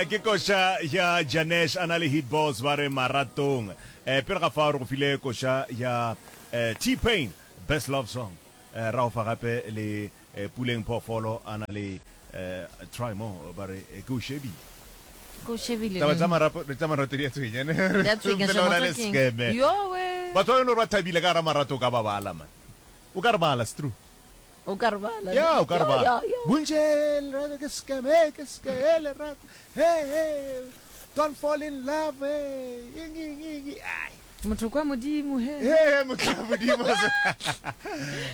Ke koša ya Janesh a na le Hit Boss ba re Maratong. Pele ga fao re go file koša ya T-Pain Best Love Song, ra go fa gape le Puleng Phoofolo a na le Try More ba re Ke O Shebile. Ke O Shebile. Taba tsa marapo tsa marato di a tshwenya ne. Di a tshwenya hle motho ke eng. Yowe. Batho ba e leng gore ba thabile ka gara marato o ka ba bala man. O ka re bala, it's true. O ka re bala. Ya, o ka re bala. Bontši lerato ke scam, hey, ke scam, hey, lerato, hey, hey, don't fall in love, hey, eng, eng, eng, ai. Motho kwa Modimo, he. He, he, motho kwa Modimo.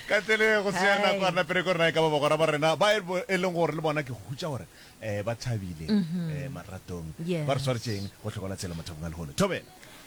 Ka tlele go se ya nako a napere ko rena e ka ba bagora ba rena ba e leng gore le bona ke go hutša gore um ba thabile um maratong ba re swaretšeng go tlhokola tshela mathapong a lehono thobela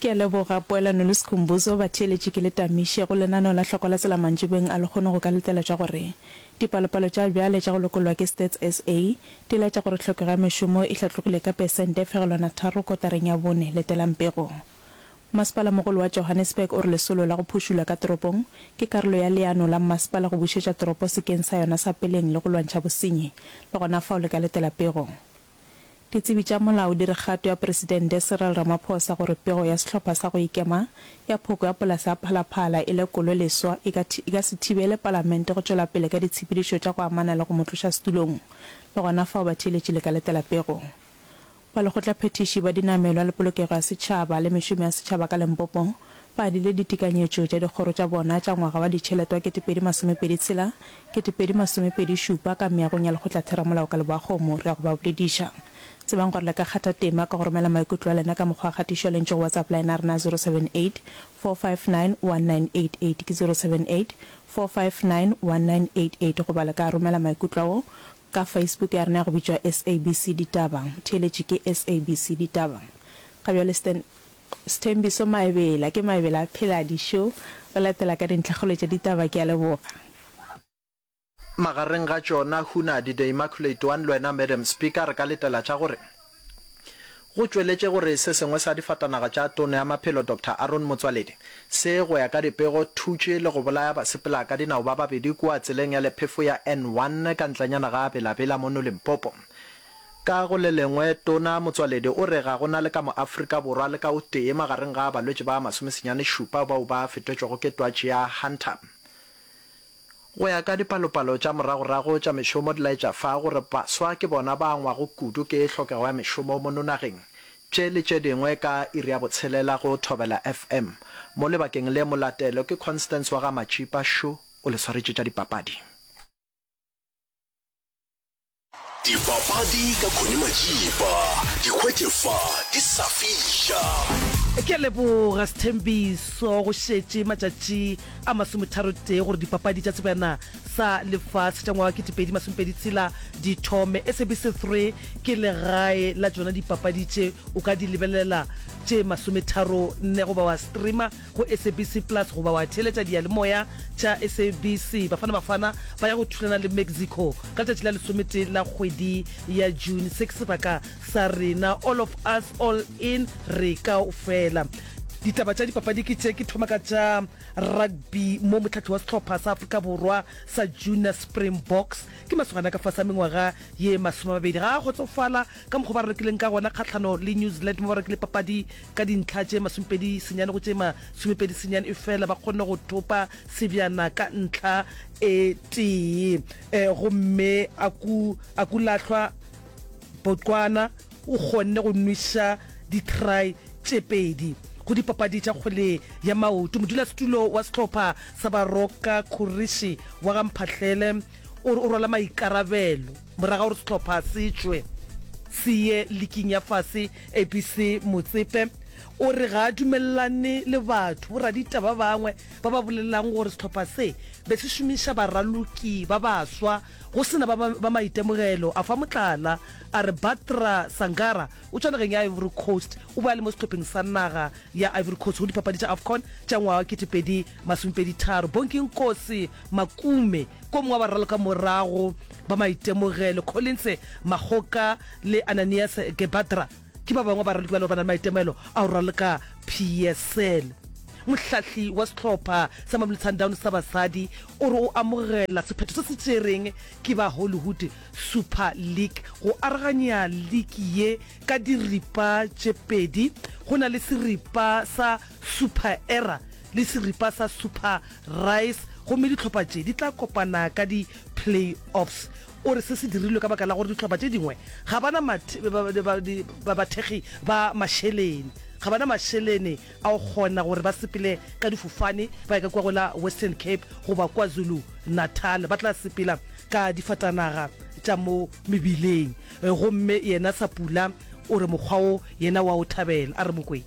Ke a leboga, Poelano le Sikhumbuzo, batheeletši ke le tamiše go lenaneo la Hloko la Tsela mantšibeng a lekgono go ka letela tša gore dipalopalo tša bjale tša go lokollwa ke Stats SA di laetša gore tlhokego ya mešomo e hlatlogile ka pesente e fegelwana tharo kotareng ya bone. Letelang pego. Masepala-mogolo wa Johannesburg o re lesolo la go phušulwa ka toropong ke karolo ya leano la mmasepala go bušetša toropo sekeng sa yona sa peleng le go lwantšha bosenyi, le gona fao le ka letela pego. Ditsebi tša molao di re kgato ya Presidente Cyril Ramaphosa gore pego ya sehlopha sa go ikema ya phoko ya polase ya Phalaphala e lekolwe leswa e ka e ka se thibele Palamente go tšwela pele ka ditshepedišo tša go amana le go mo tloša setulong le gona fao batheeletši le ka letela pego ba lekgotlaphethiši ba dinamelwa le polokego ya setšhaba le mešomo ya setšhaba ka Limpopo ba dile ditekanyetšo tša dikgoro tša bona tša ngwaga wa ditšhelete wa ketepedi masomepedi tshela, ketepedi masomepedi šupa ka meagong ya Lekgotlatheramolao ka Leboakgomo. Re ya go ba bolediša. Tsebang gore le ka kgatha tema ka go romela maikutlo a lena ka mokgwa wa kgatišo ya lentšu go WhatsApp line ya rena ya 0784591988 ke 0784591988 goba le ka romela maikutlo ao Ka Facebook ya rena ya go bitšwa SABC Ditaba, theeletše ke SABC Ditaba. Ga bjale Stan, Sthembiso Maebela, ke Maebela Phela Dišo, o latela ka dintlhakgolo tša ditaba. Ke a leboga. Magareng ga tšona Hunnadi the Immaculate One le wena Madam Speaker re ka letela tša gore. Go tšweletše go re se sengwe sa difatanaga tša Tono ya Maphelo Doctor Aaron Motsoaledi se, go ya ka dipego, thutše le go bolaya basepela ka dinao ba babedi kua tseleng ya lephefo ya N1 ka ntlanyana ga Bela Bela mono Limpopo. Ka go le lengwe, Tona Motsoaledi o re ga go na le ka mo Afrika Borwa le ka o tee magareng ga balwetše ba masomesenyane šupa bao ba fetetšwego ke twatši ya Hunter. Go ya ka dipalopalo tša moragorago tša mešomo di laetša fa gore baswa ke bona ba angwago kudu ke tlhokego ya mešomo mo nonageng. Tše le tše dingwe ka iri ya botshelela go Thobela FM. Mo lebakeng le molatelo ke Constance wa ga Matšipa Shu o le swaretše tša dipapadi. Dipapadi ka Connie Majiba, di hwetše fa di sa fiša. Ke a leboga Sthembiso, go šetše matšatši a masometharotee gore dipapadi tša Sebjana sa Lefase tša ngwaga wa ketepedi masomepedi tshela di thome. SABC 3 ke legae la tšona dipapadi tše, o ka di lebelela tše masometharo nne goba wa streamer go SABC Plus goba wa theeletša diyalemoya tša SABC. Bafana Bafana ba ya go thulana le Mexico ka letšatši la lesometee la kgwedi ya June. Se ke sebaka sa rena All of Us All In, Re Kaofela. Ditaba tša dipapadi ke tše, ke thoma ka tša rugby mo mohlahli wa sehlopha sa Afrika Borwa sa junior Springboks ke masogana ka fase a mengwaga ye masomemabedi ga a kgotsofala ka mokgwa ba rekileng ka gona kgahlano le New Zealand mo ba rekile papadi Ka dintlha tše masomepedi senyane go tše masomepedi senyane efela ba kgonne go thopa sebjana ka ntlha e tee eh, gomme Aku, Akulahlwa Botswana o kgonne go nwiša ditry tše pedi go dipapadi tša kgwele ya maoto. Modulasetulo wa sehlopha sa Baroka Khurishi wa ga Mphahlele o re o rwala maikarabelo Morago ga gore sehlopha se tšwe se ye liking ya fase ABC Motsepe o re ga a dumelelane le batho boraditaba ba bangwe ba ba bolelelang gore sehlopha se be se šomiša baraloki ba baswa go se na ba ba maitemogelo. A fa motlala a re Batra Sangara o tswa nageng ya Ivory Coast, o be a le mo sehlopheng sa naga ya Ivory Coast go dipapadi tša Afcon tša ngwaga wa 2023. Bonginkosi Makume, ko mongwe wa bararo ka morago ba maitemogelo, Collins Makgoka le Ananias Gebadra ke ba bangwe ba baraloki ba le gore ba na le maitemogelo a go raloka PSL. Mohlahli wa sehlopha sa Mamelodi Sundowns sa basadi o re o amogela sephetho se se tšereng ke ba Hollywood Super League go aroganya liki ye ka diripa tše pedi go na le seripa sa Super Era le seripa sa Super Rice gomme dihlopha tše di tla kopana ka di Play-offs. O re se se dirilwe ka baka la gore dihlopha tše dingwe ga ba na bathekgi ba mašelene, ga ba na mašelene a go kgona gore ba sepele ka difofane ba ye ka kua go la Western Cape goba KwaZulu-Natal, ba tla sepela ka difatanaga tša mo mebileng. Gomme yena Sapula o re mokgwa wo yena o a o thabela. A re Mokwena.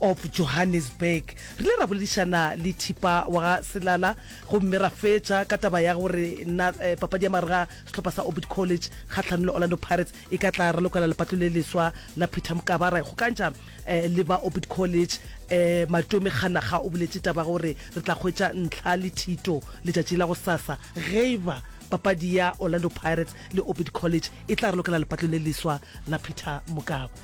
of Johannesburg. Re ile ra boledišana le Thipa wa ga Selala gomme ra fetša ka taba ya gore na papadi ya marega sehlopha sa Orbit College kgahlanong le Orlando Pirates e ka tla ralokela lepato le leswa la Peter Mokaba. Ra ikgokantšha le ba Orbit College. Matomi Kganakga o boletše taba ya gore re tla hwetša ntlha le thito letšatši la gosasa ge e ba papadi ya Orlando Pirates le Orbit College e tla ralokela lepato le leswa la Peter Mokaba.